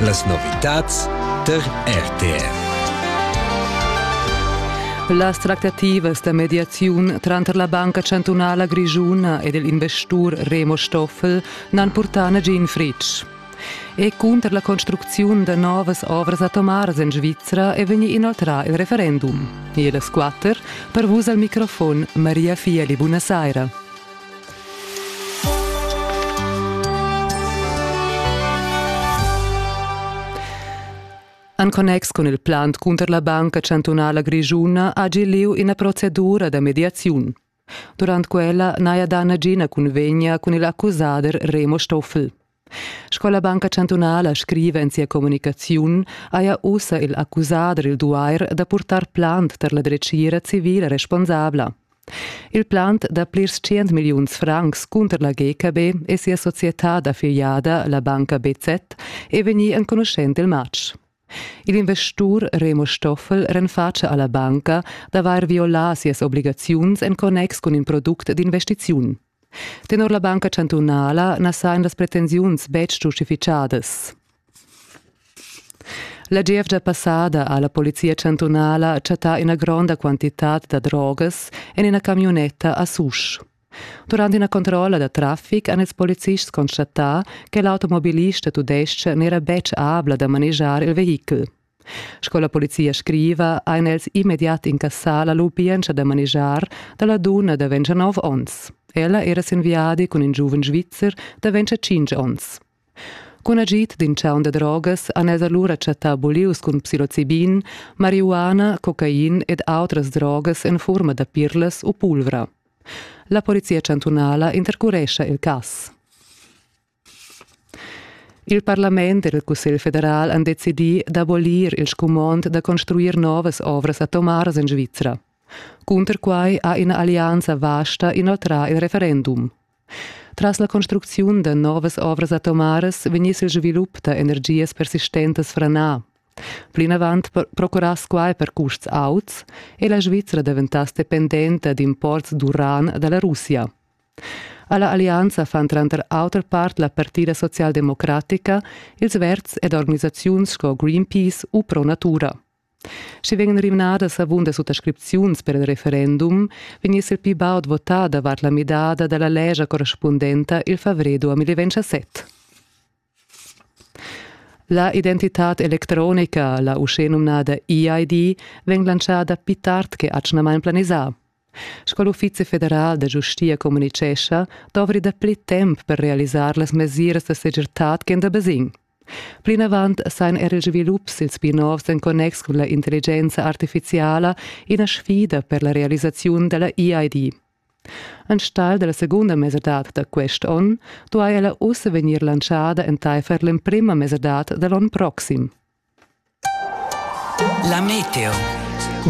Las novitads tar RTR. Las tractativas da mediaziun tranter la Banca chantunala grischuna ed il investur Remo Stoffel n'han purtà nagin fritg. E cunter la construcziun da novas ovras atomaras en Svizra è vegnì inoltrà il referendum. E las quatter, per vus al microfon Maria Fieli, buonasera. En connex cun il plan cunter la Banca chantunala grischuna hagi lieu ina procedura da mediaziun. Durant quella n'haja dà nagina cunvegna cun il accusader Remo Stoffel. Sco la Banca chantunala scriva en sia communicaziun, haja ussa il accusader il duair da purtar plant tar la dretgira civila responsabla. Il plant da plirs tschient milliuns francs cunter la GKB e sia società da filiada, la banca BZ, è vegnì enconuschent il matg. Il investur Remo Stoffel renfatscha alla banca d'avair violà sias obligaziuns en connex cun in product d'investiziun. Tenor la banca chantunala na sajan las pretensiuns betg giustifitgadas. La gievgia passada ha la polizia chantunala chattà ina gronda quantitad da drogas en ina camiunetta a Susch. Durant ina controlla da traffic han ils policists constatà che l'automobilista tudestg n'era betg abla da manegiar il vehichel. Sco la polizia scriva, ein els immediat incassà la lubientscha da manegiar dalla dunna da 29 onns. Ella era sin viadi cun in giuven svizzer da 25 onns. Cun agid d'in chaun da drogas han els allura chattà bulius cun psilocibin, marihuana, cocain ed autras drogas en furma da pirlas u pulvra. La polizia chantunala intercurescha il cass. Il parlament e il cussegl federal han decidì d'abolir il scumond da construir novas ovras atomaras en Svizra. Cunter quai ha ina allianza vasta inoltrà il referendum. Tras la construcziun da novas ovras atomaras vegniss il svilup da energias persistentas franà. Plinavant procurass quai per custs auts e la Svizra daventass dependenta d'imports d'uran da la Russia. Alla allianza fan tranter auter part la Partida socialdemocratica, ils verds ed organisaziuns sco Greenpeace u Pro Natura. Sche vegn rimnadas avunda suttascripziuns per il referendum, vegniss il pli baud votà davart la midada dalla lescha correspundenta il favrer 2017. La identitad electronica, la uschenumnada EID, vegn lantschada pli tard che atgnamain planisà. Sco l'Uffizi federal da giustia communitgescha, dovri dapli temp per realisar las mesiras da segirtad ch'en da basegn. Plinavant sain er ils svilups ils pli novs en connex cun la intelligenza artifiziala ina sfida per la realisaziun dalla EID. Enstagl dalla secunda mesadad da quest onn duai ella ussa vegnir lantschada entaifer l'emprima mesadad da l'onn proxim. La meteo.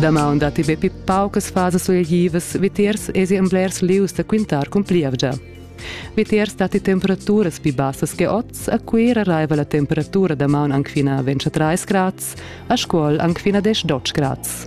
Damaun datti be pli paucas fasas suleglivas, vitiers esi en blers lieus da quintar cun plievgia. Vitiers datti temperaturas pli bassas che oz, a Cuira raiva la temperatura damaun anc fina 23 grads, a Scuol anc fina 10 grads.